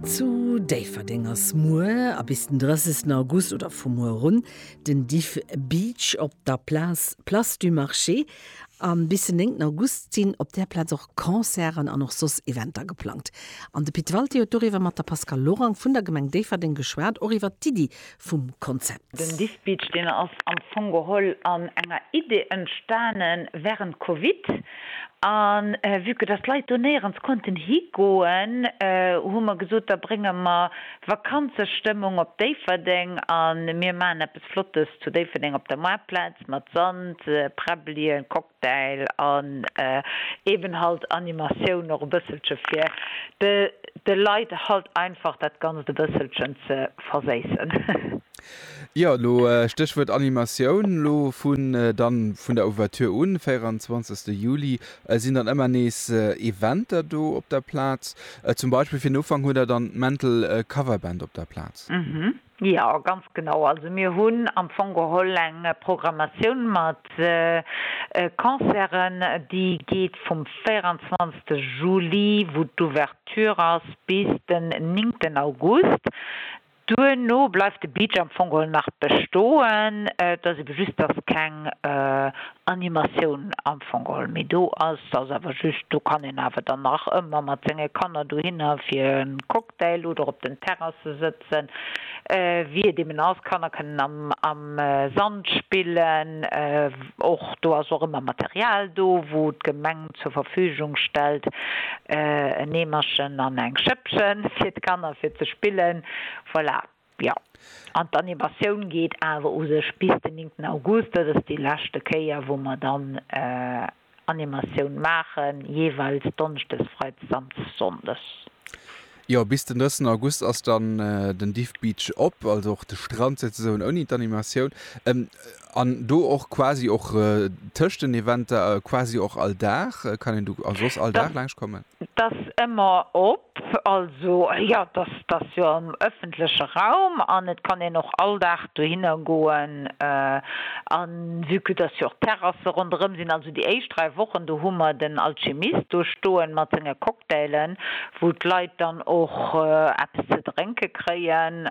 Zu Déifferdeng ass muer a bis den 30 August oder vu muer erun den Diff Beach op der Place Place du Marché. A bis den 9 August sinn op där Plaz och Concerten an och soss Eventer geplangt. An de Pit Walté huet doriwwer mat der Pascale Lorang vun der Gemeng Déifferdeng geschwat, och iwwert d'Iddi vum Konzept. Den Diff Beach, deen ass am Fong geholl an enger Idee entstanen während Covid an vue que dass d'Leit do néierens konnten higoen, hu mer gesot, da brénge mer Vakanzestëmmung op Déifferdeng an mir maachen eppes Flottes zu Déifferdeng op der Maartplaz mat Sand, Präbbelien, Cocktail. Däil an eben halt Animatioun och e bësselche fir de Leit halt einfach dat Ganzt e bësselchen ze verséissen. Jo, elo Stéchwuert Animatioun, elo vun dann vun der Ouverture un, 24 Juli, sinn dann ëmmer nees Eventer do op der Plaz. Zum Beispill fir den Ufank hutt der dann d'Mental Coverband op der Plaz. Jo, ganz genau. Also mir hunn am Fong geholl eng Programmatioun mat Concerten, déi geet vum 24 Juli, wou d'Ouverture ass, bis den 9 August. Duerno bleift de Beach am Fong geholl nach bestoen. Et ass ebe just, dass keng Animatioun am Fong geholl méi do ass. Ass awer just, do kann een awer dann nach ëmmer mat senge Kanner dohinner fir en Cocktail Däll oder op den Terrasse sëtzen, wéi et eben ass. D'Kanner kënnen am Sand spillen. Och do ass och ëmmer Material do, wou d'Gemeng zur Verfügung stellt, en Eemerchen an eng Schëppchen fir d'Kanner fir ze spillen. Voilà. Jo, an d'Animatioun geet awer u sech bis den 9 August. Dat ass déi leschte Kéier, wou mer dann Animatioun maachen, jeeweils donneschdes, freides an sonndes. Jo, bis den 9 August ass dann den Diff Beach op, also och de Strand souzesoen ouni d'Animatioun. An do och quasi och tëscht den Eventer, quasi och all Dag? Kann een do a soss all Dag laanscht kommen? Dat ass ëmmer op. Also jo, dat ass, dat ass jo am ëffentleche Raum an et kann een och all Dag dohinner goen. A vue que dass jo och Terrasse ronderëm sinn, Déi éischt 3 Wochen, do hu mer den Alchimist do stoen mat senge Cocktailen, wou d'Leit dann och eppes ze drénke kréien,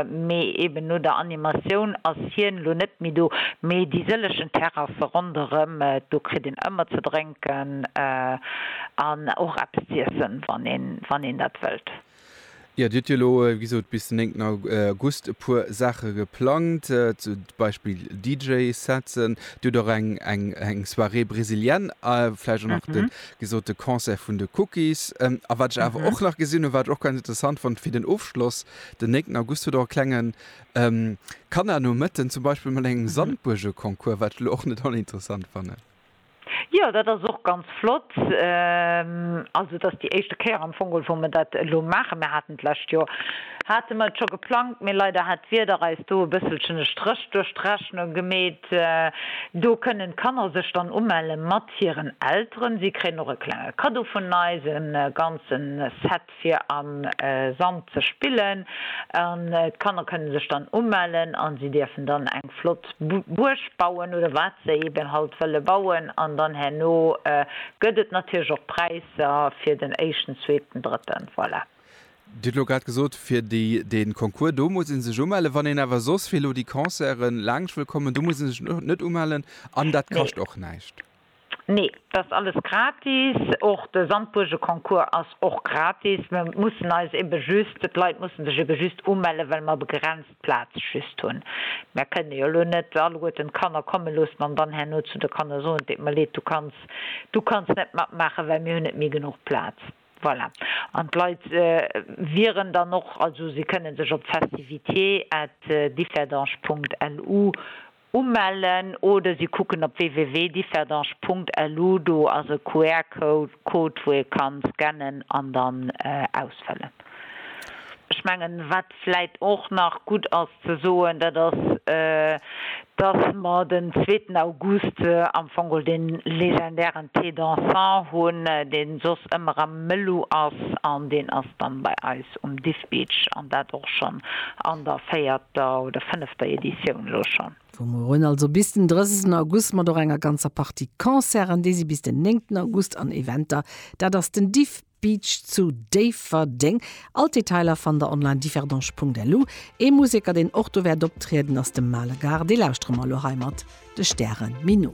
mee eben no der Animatioun ass hien elo net méi do, mee déi sëllechen Terrasse ronderëm, do kritt een ëmmer ze drénken an och eppes z'iessen, wann een dat wëllt. Jo, Dir hutt jo elo, wéi gesot, bis den 9 August e puer Saache geplangt, zum Beispill DJ-Setzen. Dir hutt och eng Soirée brésilienne a vläicht och nach, wéi gesot, de Concert vun de Cookies. A wat ech awer och nach gesinn hunn, wat ech och ganz interessant fonnt fir den Ofschloss, den 9 August hutt Der och e klenge Kannernomëtten, zum Beispill mat engem Sandbuergeconcours, wat ech elo och net oninteressant fannen. Jo, dat ass och ganz flott. Also et ass déi éischte Kéier am Fong, wou mer dat elo maachen. Mir haten d'lescht Joer, hate mer et scho geplangt, mee leider hat d'Wieder eis do e bësselchen e Stréch duerch d'Rechnung gemeet. Do kënnen d'Kanner sech dann umelle mat hiren Elteren. Si kréien och e klenge Kaddo vun eis, e ganze Set fir am Sand ze spillen an d'Kanner kënne sech dann umellen an si dierfen dann eng flott Buerg bauen oder wat se eben halt wëlle bauen an dann herno gëtt et natierlech och Präisser fir den éischten, zweeten, drëtten, voilà. Dir hutt elo grad gesot, fir de Concours, do muss ee sech umellen. Wann een awer soss fir elo déi Concerte laangscht wëll kommen, do muss ee sech net umellen an dat kascht och näischt? Nee, dat ass alles gratis. Och de Sandbuergeconcours ass och gratis. Mer mussen eis ebe just, d'Leit mussen sech ebe just umellen, well mer begrenzt Plaz just hunn. Mer kënne jo elo net alleguerten d'Kanner komme loossen an dann herno zu de Kanner soen, et deet mer leed, du kanns, du kanns net matmaachen, well mir hunn net méi genuch Plaz. Voilà. An d'Leit wieren dann och, also si kënnen sech op festivités at differdange Punkt lu Umellen oder si kucken op www.differdange.lu. Do ass e QR-Code, wou ee ka scannen an dann ausfëllen. Ech mengen, wat vläit och nach gutt ass ze soen, dat ass, dass mer den zweeten August am Fong geholl dee legendären Thé dansant hunn, dee soss ëmmer am Melu ass an deen ass dann bei eis um. Beach an dat och schonn an der véierter oder fënnefter Editioun elo schonn. Vu muerun, also bis den 30 August, mat och enger ganzer Partie Concerten, déi si bis den 9 August, an Eventer, dat ass den Diff Beach zu Déifferdeng. All d'Detailer fannt der online differdange.lu. Ee Museker, deen och do wäert optrieden, ass de Male Gare. Dee lauschtere mer elo hei mat de Stäre méi no.